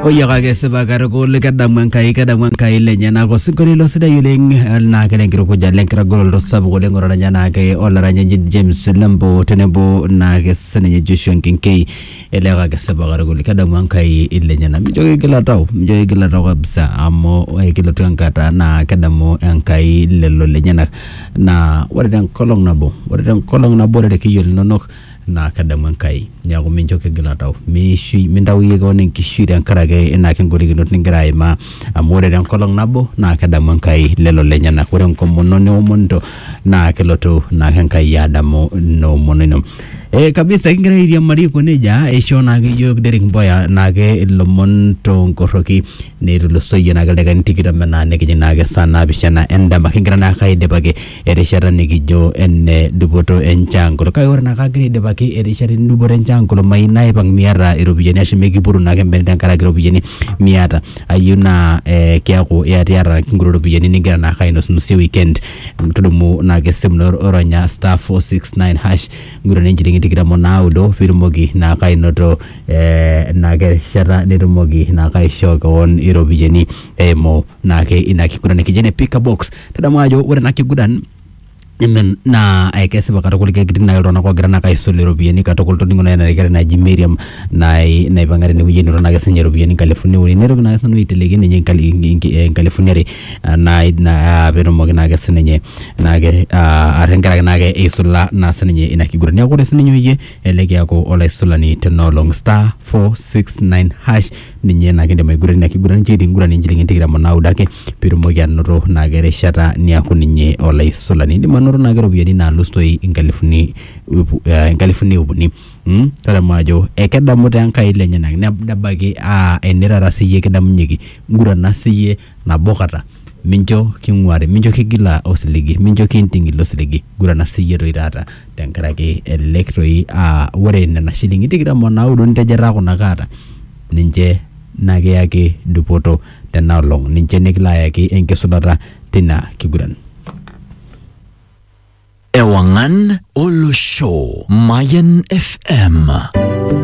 oyiaka ake esipa katukul kedamu enkai kedamu enkai lenyenak osinkolio ilo sidai oleng eh, naa kele enkitukuja le nkitagoloto sapuk oleng otaranya naake olaranyani James Lembo tenebo naake sininye Joshua Nkinkei eleeka ake esipa katukul kedamu enkai lenyenak mijo kigila tau mijo kigila tau kabisa amu eh, kelotu enkata naa kedamu enkai lelo lenyenak naa ore tenkolong nabo ore tenkolong nabo ore irkiyio linonok naa kedamu Enkai. Neeku mincho kigila tau. Miishui, mintau iyie keon enkishui tenkaraki ina golikinot nigira aimaa amu ore tenkolong nabo naa kedamu Enkai lelo lenyenak. Ore enkomono niomonito naa kelotu naake Enkai adamu ina omono ino. Eh kabisa kigira airiamari aiko nejia, eishoo naake iyiook Derrick Mboya naake ilomon toonkorroki netulusoyie naake ildakikani tikitam enaa nikijing naake saa naapishana endama. Kigira naake aidipaki erishata nikijo ene dupoto enchaankulo kake ore naake agira aidipaki erishata endupoto enchaankulo mayieu naipang miata iropiyiani ashu mikipuru naake embene tenkaraki iropiyiani miata ayieu naa eh kiaku iyatiyata inkuti ropiyiani ningira naake ainosnosie weekend tudumu naake esimu ino ronya star four six nine hash ngurana inchilingini tikitam onaudo pitumoki naake ainoto eh naake erishata nitumoki naake aishoo kewon iropiyiani eimu naake ina kiguran nikijo ene pick a box tadamu ajo ore ena kiguran Amen. naa eh, kesipa katukul ketii nai iltung'anak oogira naake aisul iropiyiani katukul toningo nai ena kerai naji Miriam nai naipang'a tenewueji enoto naake sinye iropiyiani inkalifuni uni naitoki naake sinanu aiteleki ninye inkali- inki- eh, inkalifuni are ah, nai na- ah, peetumoki naake sininye naake ah, ah, tenkaraki naake eisula naa sininye ina kiguran neeku ore sininye oyie elelek eaku olaisulani tenoolong star 469 hash ninye naa kidim aiguranie ina kiguran nchoo enkiguran inchilingini tikitam onaudo ake pitumoki anoto naake erishata niaku ninye olaisulani indim anoto naake iropiyiani nalus toi inkalifuni ip eh, inkalifuni ip uni mm? tadamu ajo ekedamu taa Enkai ilenyenak neb- nebaiki aa ene taata siyie kidamunyeki ngurana siyie nabo kata, mincho king'uari, mincho kigila osiligi, mincho kiinting' ilo siligi. Gurana siyie toi taata tenkaraki elelek toi aa ore nena shilingini tikitam o naudo nitejetaa kuna kaata ninche nakiyaki dupoto tena olong', ninche nikilo ayaki enkisulata tina kiguran. Ewang'an Olosho, Mayan FM.